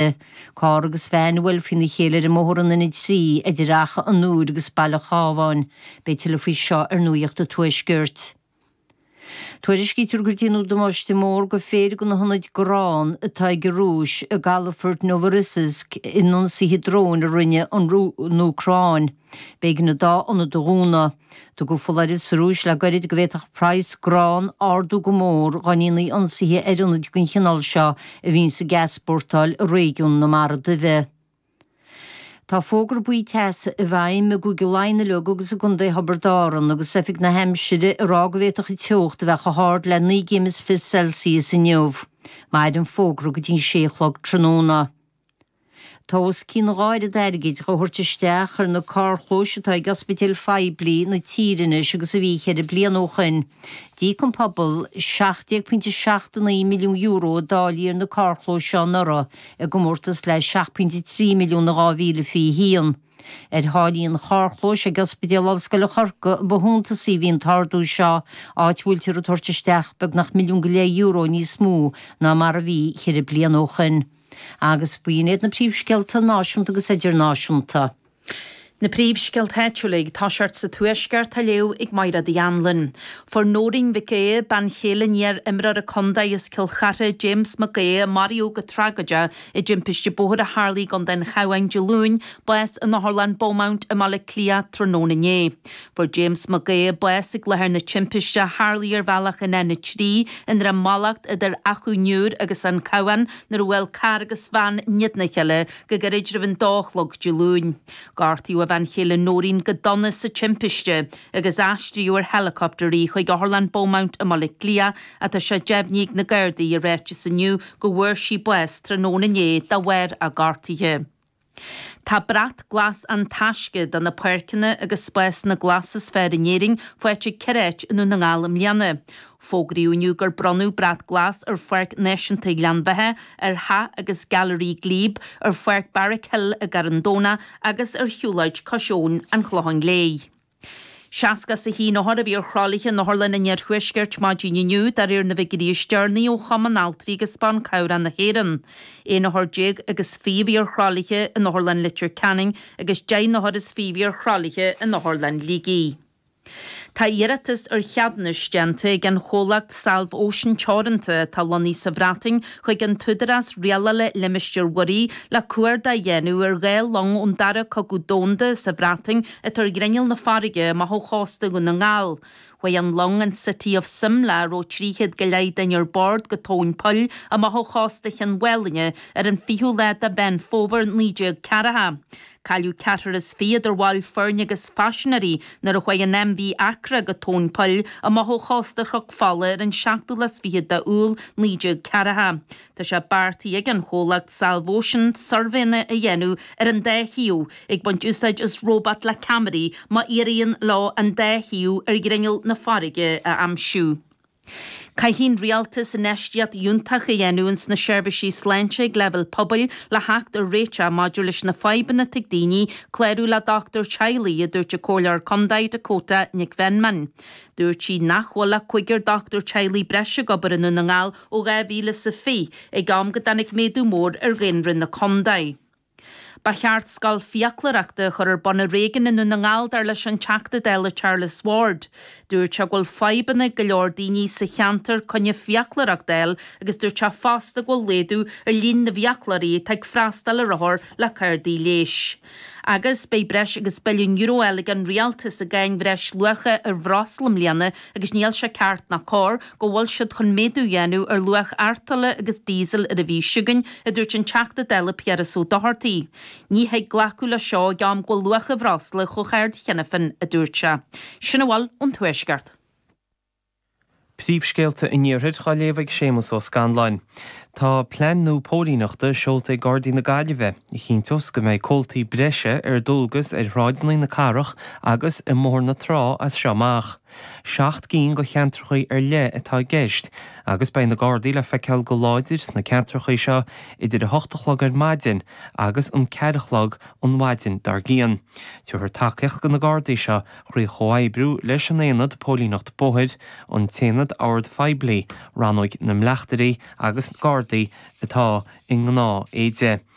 i. Carr agus veain a bhuail faoina chéile ar an mbóthar an N3 idir Achadh an Iúir agus Baile an Chábháin. Beidh tuilleadh faoi seo ar Nuaíocht an Tuaiscirt. Tuairiscítear gur déanadh damáiste mór go péire de na hionaid grán atá ag an Rúis i gcalafort Novorossiysk in ionsaithe dróin a rinne an Úcráin. B'éigean an dá ionad a dhúnadh. Tugadh foláireamh sa Rúis le gairid go bhféadfadh praghas grán ardú go mór dá ndéanfaí ionsaithe ar ionaid den chineál seo a bhíonn ag easpórtáil i réigiún na Mara Duibhe. Tá fógra buí teasa i bhfeidhm i gCúige Laighean uilig agus i gContae Thiobraid Árann agus Oifig na hAimsire ag rá go bhféadfadh an teocht a bheith chomh hard le naoi gcéim is fiche Celsius inniu. Maireann an fógra go dtí an sé a chlog tráthnóna. Tá os cionn dhá oiread airgid dhá thabhairt isteach ar na carrchlóis atá ag ospidéil phoiblí na tíre anois agus a bhí cheithre bliana ó shoin. D'íoc an pobal €17.79 milliún i dtáillí ar na carrchlóis seo anuraidh i gcomórtas le €7.3 milliún in 2021. Ar tháillí an charrchlóis ag Ospidéal Ollscoile Chorcaí ba shuntasaí a bhí an t-ardú seo, áit a bhfuiltear ag tabhairt isteach beagnach milliún go leith euro níos mó ná mar a bhí cheithre bliana ó shoin. agus b'in iad na príomhscéalta náisiúnta agus idirnáisiúnta. Na príomhscéalta áitiúla ag teacht as an Tuaisceart á léamh ag Máire Uí Annluain. Fuair Nóirín Mhic Aodha, bean chéile an iar-imreora contae as Cill Charthaigh, James Mac Aodha, a maraíodh go tragóideach i dtimpiste bóthair a tharla i gContae an Chabháin Dé Luain, bás in Otharlann Beaumont i mBaile Átha Cliath tráthnóna inné. Fuair James Mac Aodha bás ag láthair na timpiste a tharlaigh ar bhealach an N3 i nDroim Allacht idir Achadh an Iúir agus An Cabhán nuair a bhuail carr agus veain in éadan a chéile go gairid roimh an dó a chlog Dé Luain. Gortaíodh a bhean chéile Nóirín go dona sa timpiste agus aistríodh ar helicopter í chuig Otharlann Beaumont i mBaile Átha Cliath ach tá sé deimhnithe ag na Gardaí i ráiteas inniu go bhfuair sí bás tráthnóna inné de bharr a gortuithe. Tá Brat Glas An Taisce do na páirceanna agus spásanna glasa is fearr in Éirinn faighte ag ceithre áit i nDún na nGall i mbliana. Fógraíodh inniu gur bronnadh Brat Glas ar Pháirc Náisiúnta Ghleann Bheatha, ar Theach agus Gailearaí Glebe, ar Pháirc Barrack Hill i gCarn Domhnach agus ar Shiúlóid Cois Abhann an Chlocháin Léith. Seasca is a haon othar a bhí ar thralaithe in otharlanna an Iarthuaiscirt maidin inniu, de réir na bhfigiúirí is deireanaí ó Chumann Altraí agus Ban Cabhrach na hÉireann. Aon othar déag agus fiche a bhí ar thralaithe in Otharlann Litir Ceanainn agus deich n-othar is fiche a bhí ar thralaithe in Otharlann Shligigh. Tá iarratas ar cheadúnais déanta ag an chomhlacht Salv-Ocean Teoranta, atá lonnaithe sa Bhreatain, chuig an Údarás Rialála Limistéir Mhuirí le cuardach a dhéanamh ar dhá long ón Dara Cogadh Domhanda sa Bhreatain atá ar ghrinneall na farraige amach ó chósta Dhún na nGall. Chuaigh an long an City of Simla a raibh 300 go leith duine ar bord go tóin poill amach ó chósta Chinn Mhálanna ar an 20ú lá de Mheán Fómhair 1940. Cailleadh ceathrar is fiche idir bhaill foirne agus phaisinéirí nuair a chuaigh an MV Accra go tóin poill amach ó chósta Chnoc Fola ar an 27ú lá de Iúil 1940. Tá sé beartaithe ag an chomhlacht Salvocean suirbhéanna a dhéanamh ar an dá shuíomh ag baint úsáid as róbat le ceamaraí má éiríonn leo an dá shuíomh ar ghrinneall na farraige a aimsiú. Caithfidh an Rialtas infheistíocht fhiúntach a dhéanamh ins na seirbhísí sláinte ag leibhéal pobail le theacht ar réiteach maidir leis na fadhbanna atá ag daoine clárú le dochtúir teaghlaigh, a dúirt an Comhairleoir Contae Dakota Nic Mheanman. Dúirt sí nach bhfuil ach cúigear dochtúir teaghlaigh breise ag obair i nDún na nGall ó 2020, ag am go dtáinig méadú mór ar dhaonra na contae. Ba cheart scoil fiaclóireachta a chur ar bun i réigiún i nDún na nGall, dar leis an Teachta Dála Charles Ward. Dúirt sé go bhfuil fadhbanna ag go leor daoine sa cheantar coinne fiaclóireachta a fháil agus dúirt sé fosta go bhfuil laghdú ar líon na bhfiaclóirí atá ag freastáil ar othair le cártaí leighis. Agus beidh breis agus billiún euro eile ag an Rialtas i gcáin bhreis luacha ar bhreosla i mbliana agus níl sé ceart ná cóir go bhfuil siad chun méadú a dhéanamh ar luach artola agus díosail ar an mhí seo chugainn, a dúirt an Teachta Dála Piaras Ó Dochartaigh. Ní thig glacadh leis seo ag am go bhfuil luach an bhreosla chomh hard cheana féin, a dúirt sé. Sin a bhfuil ón Tuaisceart. Príomhscéalta an Iarthair á léamh ag Séamus Ó Scanláin. Tá plean nua póilíneachta seolta ag Gardaí na Gaillimhe a chinnteos go mbeidh comhaltaí breise ar dualgas ar shráideanna na cathrach agus i mBóthar na Trá as seo amach. Seacht gcinn de cheantracha ar leith atá i gceist agus beidh na Gardaí le feiceáil go láidir sna ceantracha seo idir a 8 a chlog ar maidin agus an 4 a chlog an mhaidin dár gcíonn. Tabharfar tacaíocht do na Gardaí seo Trí chomhoibriú leis an Aonad Póilíneachta Bóthair, an tAonad Ord Phoiblí, Rannóig na mBleachtairí agus Gardaí atá i ngnáth éide,